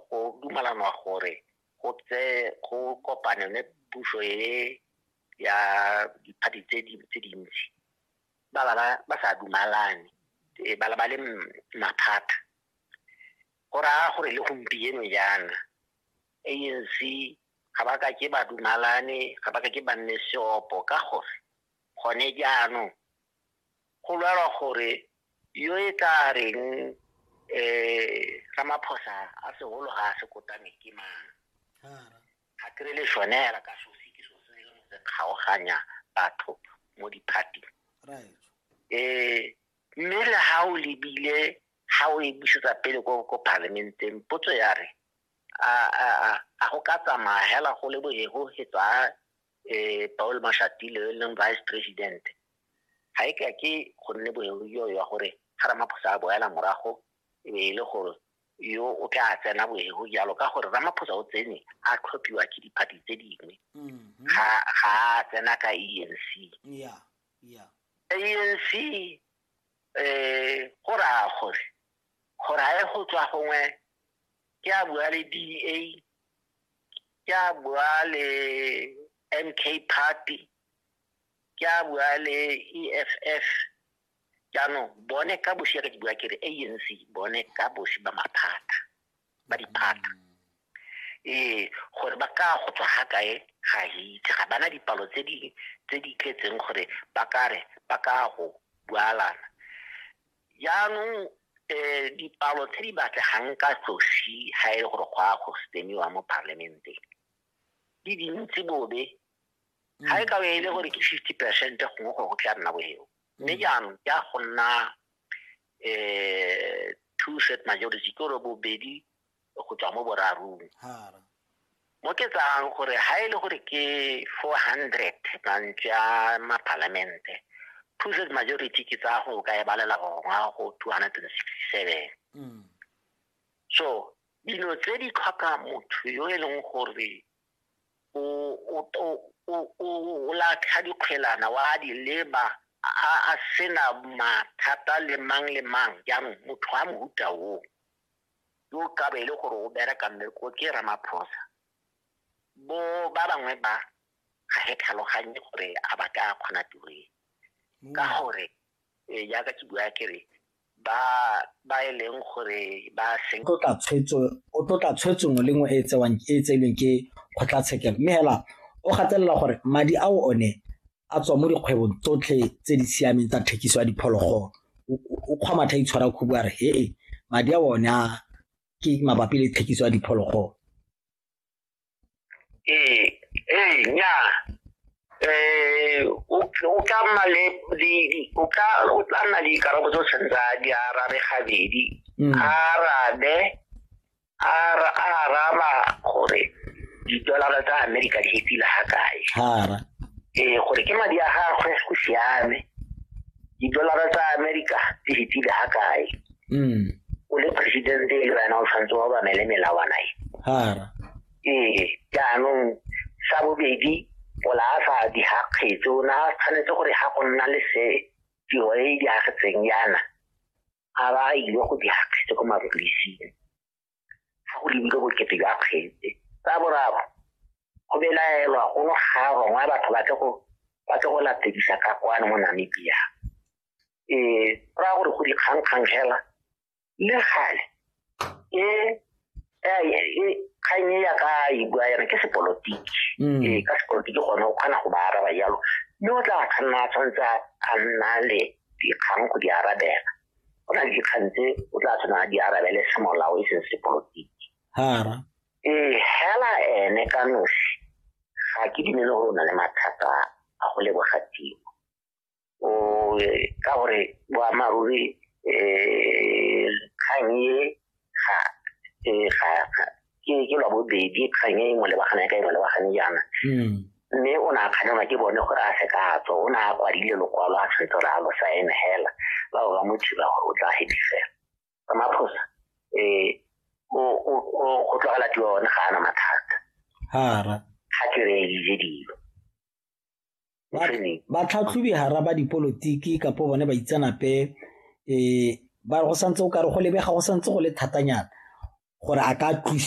go dumalanwa gore go tse go kopane le puso e ya diphathi tse di tse dintsi ba ba ba sa dumalane e ba ba le mathata go raya gore le gompieno jaana ANC ga ba ka ke ba dumalane ga ba ka ke ba nne seopo ka gore gone jaanong Go lwelwa gore yo e tla reng um Ramaphosa a segolo ga a se kotame ke mang. Ga kry le sone hela ka sosi ke so se leng se kgaoganya batho mo di-party. Um mme le ha o lebile ha o e busetsa pele ko parliament-eng potso ya re a go ka tsamaya hela go le bo he go hetswa eh Paul Mashatile yo e leng vice president ga e ka ke go nne boeruyo ya gore ga Ramaphosa a boela morago e be e le gore yo o tla tsena boego jalo ka gore Ramaphosa o tsene a tlhophiwa ke diphathi tse dingwe mm-hmm. ga a tsena ka ANC yeah yeah ANC eh go raya gore gore a e go tswa gongwe ke a bua le DA ke a bua le MK Party, ke a bua le EFF jaanong bone ka bosi ya ke bua ke re ANC bone ka bosi ba maphata ba diphata ee gore ba ka go tswa ga kae ga itse ga bana dipalo tse di tse di tletseng gore ba ka re ba ka go bualana Jaanong um dipalo tse di batlegang ka tsosi ga e le gore go a go semiwa mo parliamenteng di dintsi bobe ga e ka e le gore ke fifty percent gongwe gore go tla nna boeo mme jaanong ke a go nna um two set majority ke gore bobedi go tswa mo borarong mo ke tsayang gore ha e le gore ke 400 mantswe a mapalamente two third majority ke tsaya go ka e balela gongwa go 267 mm. so dilo tse di tlhoka motho yo e leng gore o latlha dikgwelana wa di leba a sena mathata le mang le mang jaanong motho a mohuta oo yo ka be e le gore o bereka mmereko ke ramaphosa bo ba bangwe ba ga he tlhaloganye gore a ba ka kgona tiro e ka mm. gore e, jaaka ke bua kere ba ba e leng gore ba seng o tla tshwetso o tla tshwetso ngwe le ngwe e tsewang e tselweng ke kgotlatshekelo mme hela o gatelela gore madi ao one a tswa mo dikgwebong tsotlhe tse di siameng tsa thekiso ya diphologolo o kgwa matha itshwara khubu a re hee madi a one a ke mabapi le thekiso ya diphologolo ee ee nyaa eh o tla mma le o tla o tla nna le dikarabo tse o tshwanetseng a di arabe gabedi mm. a arabe a ra- a araba gore didolara tsa amerika di fetile ga kae hara ee gore ke madi a gagwe go siame didolara tsa amerika di fetile ga kae mm o le presidente e le wena o tshwanetse wa obamele melawana e hara ee jaanong sa bobedi pola a sa di ga kgetso o ne a tshwanetse gore ga go nna le se tiro e e diagetseng yana a ba a ile go dira kgetse ko mapodising fa go lebile bokete jwa kgetse tsa boraro go belaelwa go no ga rongwa batho ba tle go ba tle go latedisa ka kwane mo namibia um ra gore go dikgangkgang fela le gale e kgang e ya ka e bua yana ke sepolotiki mm. ee ka sepolotiki gone o kgona go ba araba jalo mme o tla kganna a tshwanetse a nna le dikgang go di arabela go na le dikgang tse o tla tshwanang di arabele semolao e seng sepolotiki ee hela ene ka nosi ga ke dumele gore o na le mathata a go leboga timo o ka gore boammaaruri um kgang e ga ke ke lwa bobedi kgang e mo lebagana ya ka e mo lebagane jaana hmm. mme o ne a kganelwa ke bone gore a se ka a tswa o ne a kwadile lokwalo a tshwetse gore a lo saene hela ba ba mo thiba gore o tla hepi fela ka maphosa um go tlogela tiwa one ga ana mathata ga ke re dije dilo batlhatlhobi hara ba dipolotiki kapo bone baitsanape um ba go santse o kare go lebega go santse go le thatanyana gore a ka tlosiwa